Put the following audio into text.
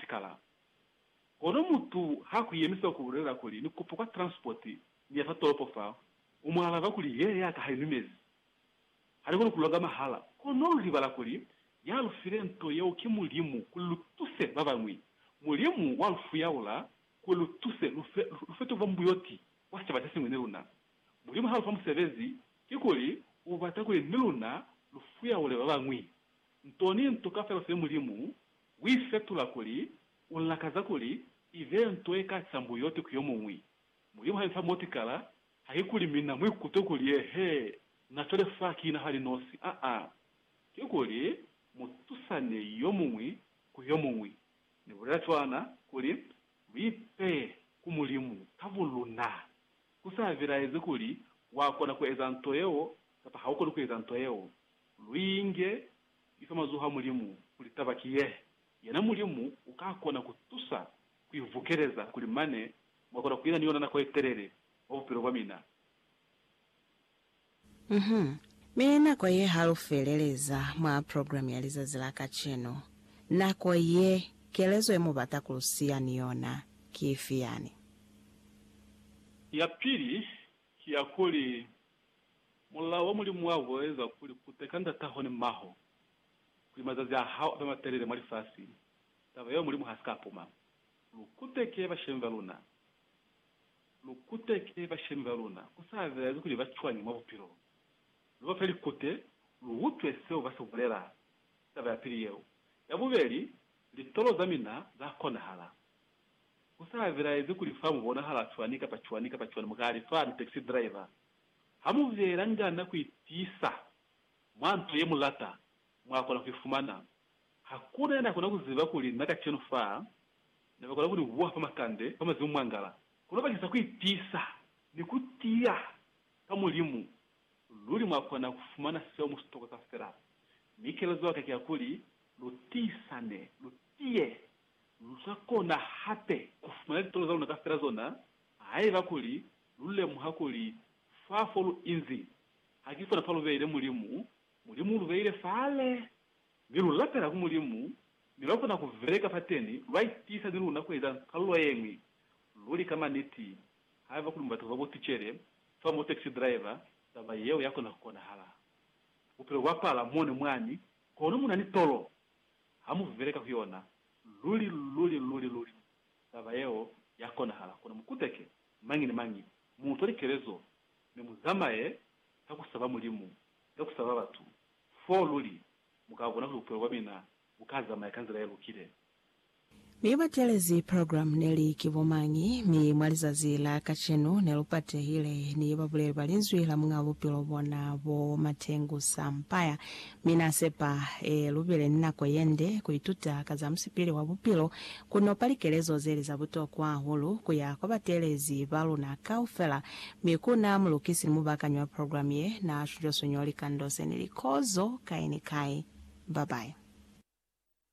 Likalabo. Kono mutu ha ku yemisa ku bulelela kuli ni kupa kwa transport ni ya fa tolopo fa, u mu alaba kuli ye ya ka ha i numezi. Ha ni koni ku longa mahala. Kono lu libala kuli ya lu file nto yeo ki Mulimu kuli lu tuse ba bañwi. Mulimu wa lu fuyaula kuli lu tuse lu fe, lu fe tuvambuyoti kwa sicaba se siñwi ni luna. Mulimu ha lu fa musebezi, kikuli u bata kuli ni luna lu fuyaule ba bañwi. Nto ni nto kaufela u file Mulimu Ku i fetula kuli u lakaza kuli i be nto ye ka ca mbuyote ku yo muñwi. Mulimu ha ni fa motikala, haikuli mina mu ikutwe kuli eehe, na cwale fa ki na hali nosi. Aa. Kikuli mu tusane yo muñwi ku yo muñwi. Ni bulela cwana kuli, Lu ipeye ku Mulimu ka buluna. Ku sa bilaezi kuli wa kona ku eza nto yeo kapa ha u koni ku eza nto yeo. Lu inge Ni fa mazoho a Mulimu kuli taba ki ye, yena Mulimu uka kona ku tusa ku i vukeleza kuli mane mwa kona ku ina ni yona nako ye telele mwa bupilo bwa mina. Uhum. Mi nako ye ha lu feleleza mwa program ya lizazi la kacenu. Nako ye, kelezo ye mu bata ku lu siya ni yona ki ifi yani? Ya pili, Ki ya kuli, Mulao wa Mulimu wa bulaeza kuli kute ka ndataho ni mmaho, kuli mazazi a hao abe matelele mwa lifasi, taba yeo Mulimu ha si ka puma. Lu kuteke bashemi ba luna. Lu kuteke bashemi ba luna, ku sa bezi kuli ba cwañi mwa bupilo. Lu ba fe likute, lu utwe seo ba si bulela. Taba ya pili yeo. Ya bubeli, litolo za mina za konahala. Ku sa belaezi kuli fa mu bonahala cwani kapa cwani kapa cwani, mu ka li fani taxi driver. Ha mu belangana ku itiisa mwa nto ye mu lata, mwa kona ku i fumana. Hakuna ya na kona ku ziba kuli na kacenu fa ne ba kona ku ni buha fa makande, fa mazimu mwangala. Kono bakisa ku itiisa ni ku tiya ka Mulimu, luli mwa kona ku fumana seo mu si tokwa kafela. Mi kelezo ya ka ki ya kuli, lu tiisane, lu tiye, Lu sa kona hape ku fumana litolo za luna kafela zona haiba kuli lu lemuha kuli fa fo lu inzi ha ki fona fa lu beile Mulimu. Mulimu u lu beile fale, mi lu lapela ku Mulimu, mi lwa kona ku beleka fateni. Lwa itiisa ni luna ku eza kalulo ye ñwi. Luli ka maniti, haiba kuli mubata ku ba bo ticele kamba bo taxi driver, taba yeo ya kona ku konahala. Bupilo bwa pala mone mwani, kono mu na ni tolo Ha mu beleka ku yona, luli, luli, luli, luli taba yeo ya konahala. Kono mu kuteke, mañi ni mañi, mu utwa likelezo, mi mu zamaye ka ku saba Mulimu, ka ku saba batu, foo luli mu ka bona kuli bupilo bwa mina bu ka zamaya ka nzila ye lukile. Mi batelezi program neli ki bomañi, mi mwa lizazi la kacenu ne lu patehile ni babuleli ba Linzwi la Muñaa Bupilo bona bo Matengu Sampaya. Mi Na sepa e lubile ni nako yende ku ituta ka za musipili wa bupilo, ku nopa likelezo zeli za butokwa hahulu ku ya kwa batelezi ba luna kaufela, mi ku na mulukisi ni mubaakanyi wa program ye na suño-suño likando se ni likozo kai ni kai. Babayi.